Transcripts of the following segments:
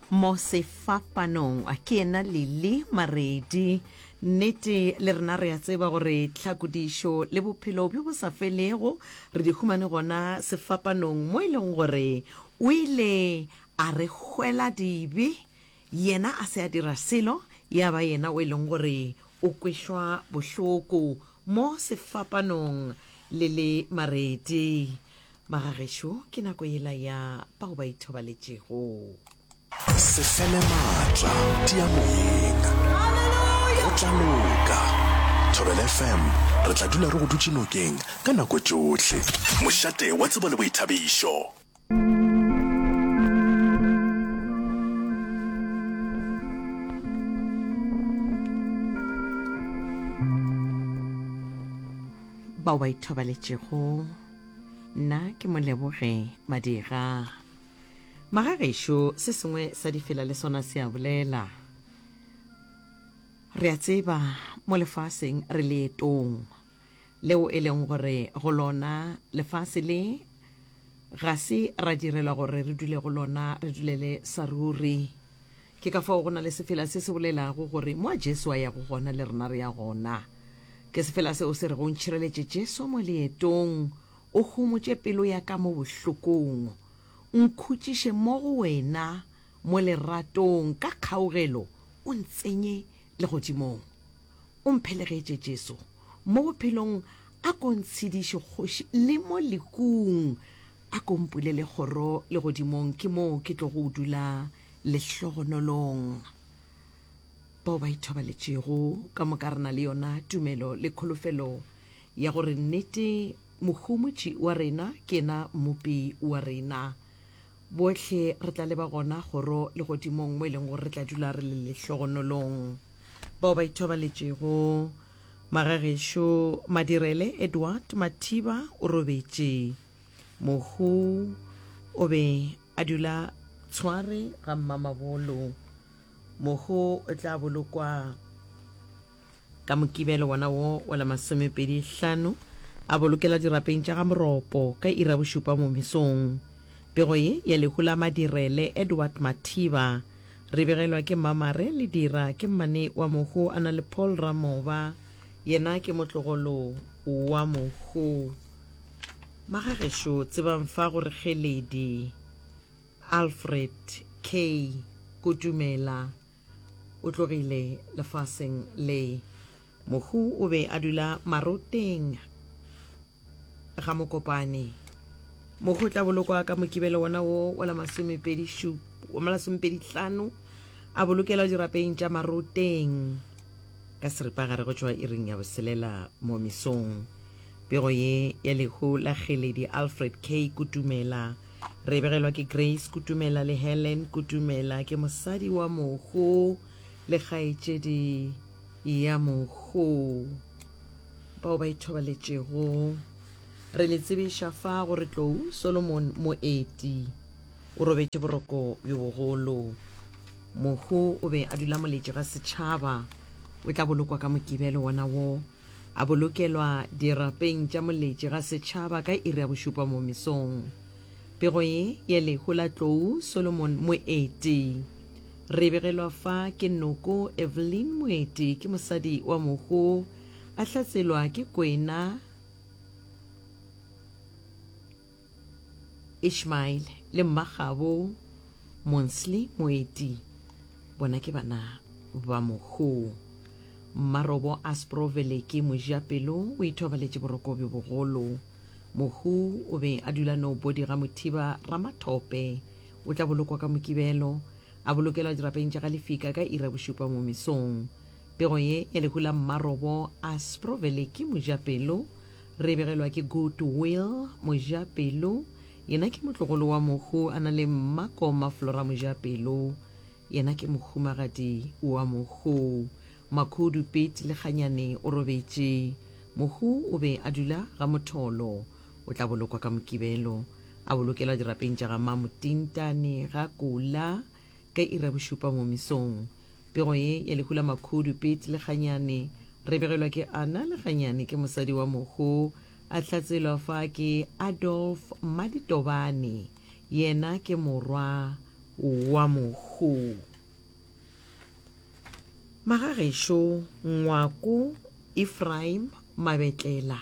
mo sefapanong ke yena lili maredi nnete le rena re a tseba gore tlhakodišo le bophelo bjo bo sa felego re di humane gona sefapanong mo e leng gore o ile a re hwela dibe Yena a se a dira selo, ya ba yena o e leng gore o kwešwa bohloko mo sefapanong le le marete. Magagešo, ke nako yela ya bao ba ithobaletšego. Se fele maatla, tia moyeng. Go tla loka. Thobela FM, re tla dula re go dutše nokeng ka nako tšohle. Mošate wa tsebo le boithabišo. bao ba ithobaletšego nna ke moleboge madira magagešo se sengwe sa difela le sona se a bolela re a tseba mo lefaseng re leetong leo e leng gore go lona lefase le ga se ra direlwa gore re dule go lona re dulele sa ruri. Ke ka fao go na le sefela se se bolelago gore mo a Jesu a yago gona le rena re ya gona. Ke sefela seo se rego ntšhireletše Jesu mo leetong, o homotše pelo ya ka mo bohlokong, nkhutšiše mo go wena mo leratong, ka kgaugelo o ntsenye legodimong. o mphelegetše, Jesu, mo bophelong, a ko ntshediše, Kgoši, le mo lekung, a ko mpulele kgoro legodimong, ke moo ke tlogo dula lehlogonolong. Bao ba ithobaletšego, ka moka re na le yona tumelo le kholofelo ya gore nnete Mohumutši wa rena ke yena Mmopi wa rena. Bohle re tla leba gona kgoro legodimong mo e leng gore re tla dula re le lehlogonolong. Bao ba ithobaletšego, Magagešo Madirele Edward Mathiba o robetše. Mohu o be a dula Tshware ga Mmamabolo. Mohu o tla bolokwa Ka Mokibelo wona wo wa la masomepedi hlano, a bolokela dirapeng tša ga Moropo ka iri ya bošupa mo mesong. Pego ye ya lehu la Madirele, Edward Mathiba, re begelwa ke Mmamare Ledira, ke mmane wa mohu, a na le Paul Ramoba, yena ke motlogolo wa mohu. Magagešo tsebang fa go re Kgeledi, Alfred K. Kutumela. O tlogile lefaseng le. Mohu o be a dula maroteng ga Mokopane. Mohu o tla bolokwa ka mokibelo wona wo wa la masomepedi hlano a bolokelwa dirapeng tša maroteng ka seripagare go tšwa iring ya boselela mo mesong. Pego ye ya lehu la Kgeledi Alfred K. Kutumela Re begelwa ke Grace Kutumela le Helen Kutumela, ke mosadi wa mogo le kgaetšedi ya mogo bao ba ithobaletšego. Re le tsebiša fa gore tlou Solomon Moeti o robetše boroko bjo bogolo. Mogo o be a dula moletši ga setšhaba, o tla bolokwa ka Mokibelo wona wo A bolokelwa dirapeng tša moletši ga setšhaba ka iri ya bošupa mo mesong. Pego ye ya lehu la tlou Solomon Moeti. Re begelwa fa ke noko Evelyn Moeti ke mosadi wa mohu a hlatselwa ke kwena Ishmael le mmagabo Monsley Moeti bona ke bana ba mohuu. Mmarobo Aspro Veleke Mojapelo o ithobaletše boroko bjo bogolo. Mohuu o be a dula Nobody ga Mothiba Ramathope. O tla bolokwa ka Mokibelo, a bolokelwa dirapeng tša ga Lefika ka iri ya bošupa mo mesong. Pego ye e lehu la Mmarobo a Sprovelly ke mojapelo, re e begelwa ke Good Will Mojapelo, yena ke motlogolo wa mohu a na le mmako Maflora Mojapelo, yena ke mohumagadi wa mohu. Makhudu Pete Lekganyane o robetše. Mohu o be a dula ga Motholo. O tla bolokwa ka Mokibelo. A bolokelwa dirapeng tša ga Mamo Tintane ga Kula. ka iri ya bošupa mo mesong. Pego ye ya lehu la makhudu, Pete le Kganyane, re begelwa ke Anna le Kganyane ke mosadi wa mohu a hlatselwa fa ke Adolf Maditobane, yena ke morwa wa mohu. Magagešo, Ngwako, Ephraim, Mabetlela.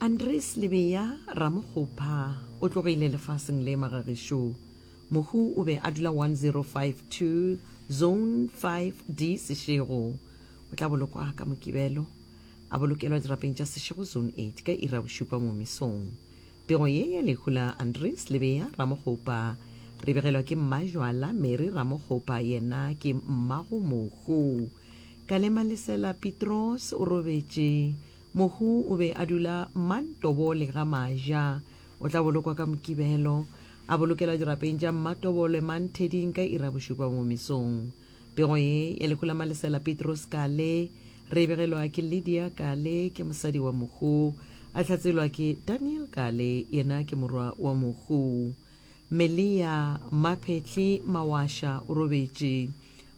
Andries Lebeya Ramokgopha o tlogile lefaseng le magagešo. Mohu o be a dula 1052 Zone 5D Seshego. O tla bolokwa ka Mokibelo, a bolokelwa dirapeng tša Seshego Zone 8 ka iri ya bošupa mo mesong. Pego ye ya lehu la Andries Lebeya Ramokgopha re begelwa ke Mmajwala Mary Ramokgopha yena ke mmago mohu. Kalemalisela Pitroos o robetše. Mohu o be a dula Mantobole ga Maja. O tla bolokwa ka Mokibelo. A bolokelwa dirapeng tša Mmatobole Mantheding ka iri ya bošupa mo mesong. Pego ye ya lehu la Malesela Petros Kale re e begelwa ke Lydia Kale, ke mosadi wa Mohu. A hlatselwa ke Daniel Kale, yena ke morwa wa Mohu. Melia, Maphetli, Mawasha o robetše.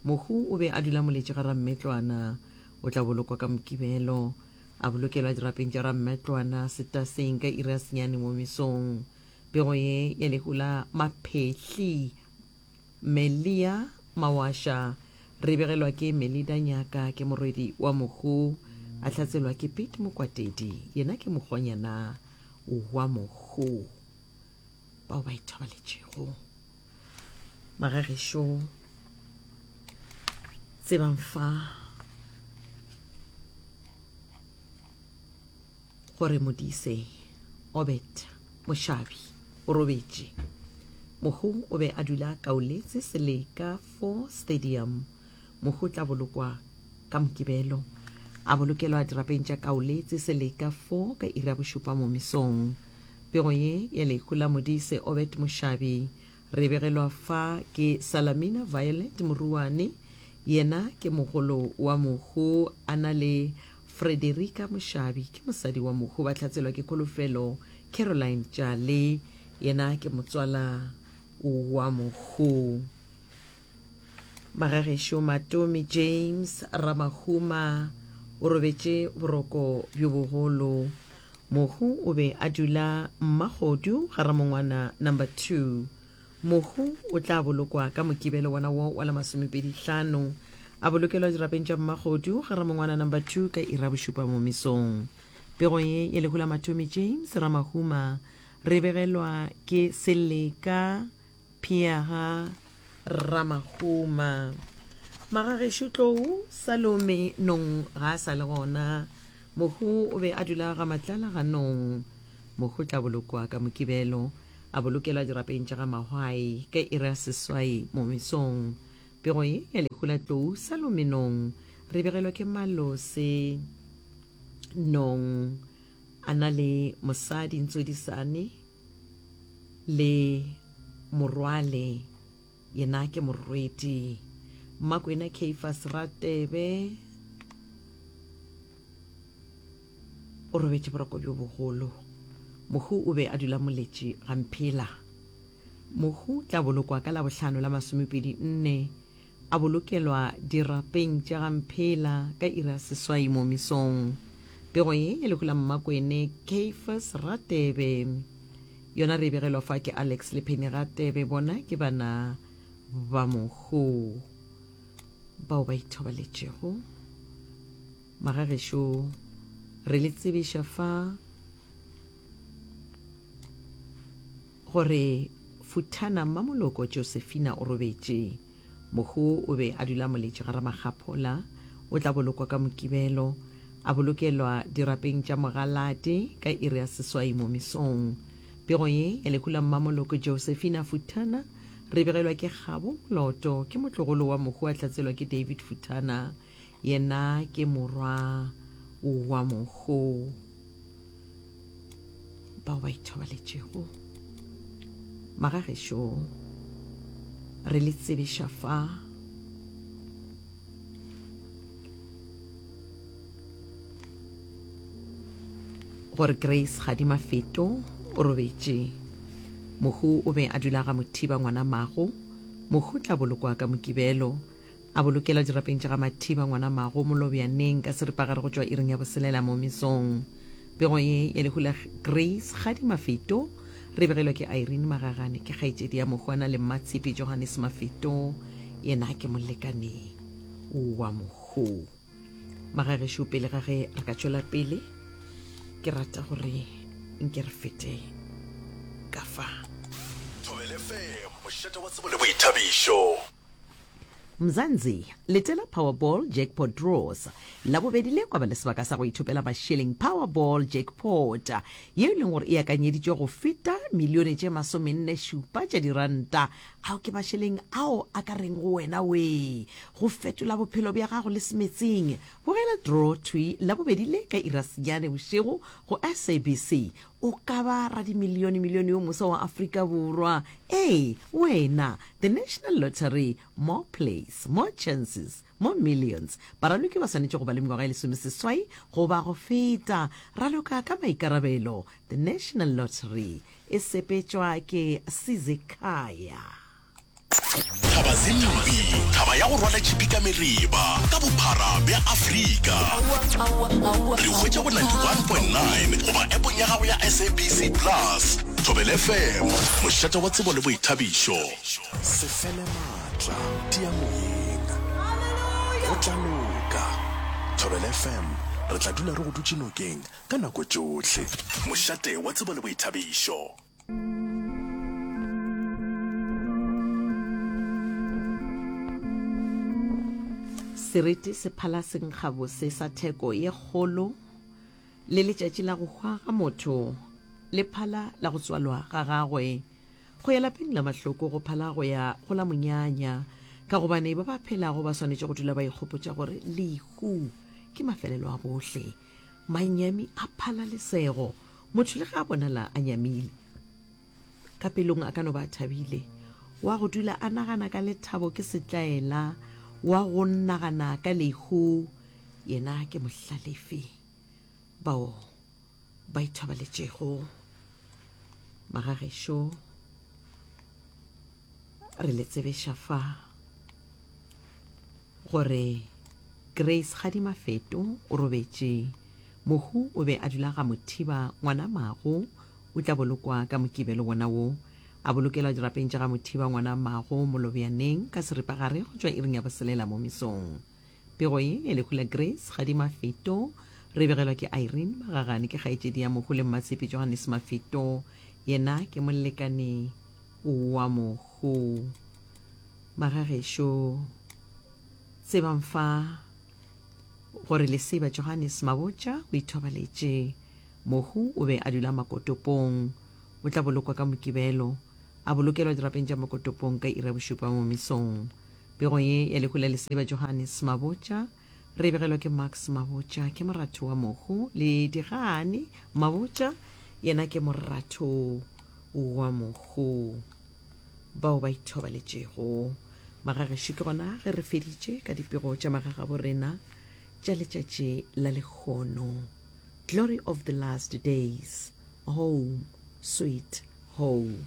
Mohu o be a dula Moletši ga Rammetlwana. o tla bolokwa ka Mokibelo, a bolokelwa dirapeng tša Rammetlwana setaseng ka iri ya senyane mo mesong. Pego ye ya lehu la Maphehli, Melia Mawasha, re begelwa ke Melida Nyaka, ke morwedi wa Mohu, a hlatselwa ke Pete Mokwatedi, yena ke mokgonyana wa Mohu bao ba ithobaletšego. magagešo tsebang fa gore modise obet mošabi o robetše mohu o be a dula kaoletse seleka fo stadium Mohu o tla bolokwa ka Mokibelo, a bolokelwa dirapeng tša kaole tse seleka 4 ka iri ya bošupa mo mesong. Pego ye ya lehu la Modise Obed Mošabi re begelwa fa ke Salamina Violet Moruane, yena ke mogolo wa mohu, a na le Frederica Mošabi, ke mosadi wa mohu, ba hlatselwa ke Kholofelo Caroline Tšale, yena ke motswala wa mohu. Magagešo Matomi James Ramahuma o robetše boroko bjo bogolo. Mohu o be a dula Mmagodu ga Ramongwana number 2. Mohu o tla bolokwa ka Mokibelo wona wo wa la masomepedi hlano. A bolokelwa dirapeng tša Mmagodu ga Ramongwana number 2 ka iri ya bošupa momisong. Pego ye ya lehu la Matomi James Ramahuma re e begelwa ke Seleka Phia ga Rramahuma. Magagešo tlou, Salome Nong ga a sa le gona. Mohu o be a dula ga Matlala ga Nong. Mohu tla bolokwa ka Mokibelo, a bolokelwa dirapeng tša ga Mahwai ka iri ya seswai mo mesong. Pego ye ya lehu la tlou Salome Nong re begelwa ke Malose Nong a na le mosadi Ntsodisane. Le morwale yena ke morweti. Mmakwena Caiphas Ratebe o robetše boroko bjo bogolo. Mohu o be a dula moletše ga mphela. Mohu tla bolokwa ka Labohlano la masomepedi nne A bolokelwa dirapeng tša ga Mphela ka iri ya seswai mo mesong. Pego ye ya lehu la Mmakwene, Caiphas Ratebe, yona re e begelwa fa ke Alex le Penny Ratebe, bona ke bana ba mohu bao ba ithobaletšego. Magagešo re le tsebiša fa. Gore, Futhana, mmamoloko Josefina o robetše. Mohu o be a dula moletše ga Ramakgaphola. O tla bolokwa ka Mokibelo. A bolokelwa dirapeng tša mogalate ka iri ya seswai mo mesong. Pego ye ya lehu la mmamoloko Josefina Futhana re e begelwa ke kgabo, moloto, ke motlogolo wa mohu a tlatselwa ke David Futhana. Yena ke morwa wa monkgo bao ba ithobaletšego. Magagešo re le tsebiša fa gore Grace ga di mafeto o robetše mohu o be a dula ga mothiba ngwana mago mohu tla bolokwa ka mokibelo A bolokela dirapeng tša ga Mathiba ngwana mago Molobjaneng ka seripagare go tšwa iring ya boselela mo mesong. Pego ye ya lehu la Grace Kgadi Mafeto re begelwa ke Irene Magagane, ke kgaetšedi ya Mohwana le Mmatshepe Johannes Mafeto, yena ke molekane wa Mohu. Magagešo pele ga ge re ka tšwela pele, ke rata gore nke re fete ka fa. Thobelefm, mošate wa tsebo le boithabišo. Mzansi, letela Powerball Jackpot Draws. Labobedi le kwa ba le sebaka sa go ithopela mašeleng Powerball Jackpot, yeo e leng gore e akanyeditšwe go feta milione tše masomenne šupa tša diranta. Ao ke mašeleng ao a ka reng go wena, Wee! Go fetola bophelo bja gago le semetseng! Bogela draw thwi Labobedi le ka irasenyane bošego go SABC. O ka ba radimilionemilione yo mosa wa Afrika Borwa. Ee, wena! The National Lottery, More Plays, More Chances, More Millions. Baraloki ba swanetše go ba le mengwaga e lesomeseswai goba go feta. Raloka ka maikarabelo. The National Lottery e sepetšwa ke Sizekhaya. Thaba Zimbi, thaba ya go rwala tšhipi ka meriba ka bophara bja Afrika. Re hwetša go 91.9 goba appong ya gago ya SABC Plus. Thobela FM, mošate wa tsebo le boithabišo. Se fele maatla, tia moyeng. Go tla loka. Thobela FM, re tla dula re go dutše nokeng ka nako tšohle. Mošate wa tsebo le boithabišo. seriti se phala senkgabose sa theko ye kgolo le letšatši la go hwa ga motho le phala la go tswalwa ga gagwe go ya lapeng la mahloko go phala go ya go la monyanya ka gobane ba ba phelago ba swanetše go dula ba ikgopotša gore lehu ke mafelelo a bohle Manyami a phala lesego. Motho le ge a bonala a nyamile, ka pelong a ka no ba a thabile. Wa go dula a nagana ka lethabo ke setlaela, wa go nagana ka lehu yena ke mohlalefi. Bao ba ithobaletšego magagešo. re le tsebeša fa gore Grace Gadimafeto o robetše mohu o be a dula ga Mothiba ngwana mago o tla bolokwa ka mokibelo wona wo a bolokelwa dirapeng tša ga Mothiba ngwana mago Molobjaneng ka seripagare go tšwa iring ya boselela mo mesong Pego ye ya lehu la Grace ga di Mafeto. Re begelwa ke Irene Magagane, ke kgaetšedi ya mohu le mmatshepi Johannes Mafeto, yena ke molekane wa mohu. Magagešo, tsebang fa gore leseba Johannes Mabotja o ithobaletše. Mohu o be a dula Makotopong. O tla bolokwa ka Mokibelo, a bolokelwa dirapeng tša Makotopong ka iri ya bošupa mo mesong. Pego ye ya lehu la lesadi ba Johannes Mabotja re e begelwa ke Max Mabotja ke moratho wa mohu le Digane Mabotja yena ke moratho wa mohu bao ba ithobaletšego magagešo ke gona ge re feditše ka dipego tša magagabo rena tša letšatši la lekgono glory of the last days home sweet home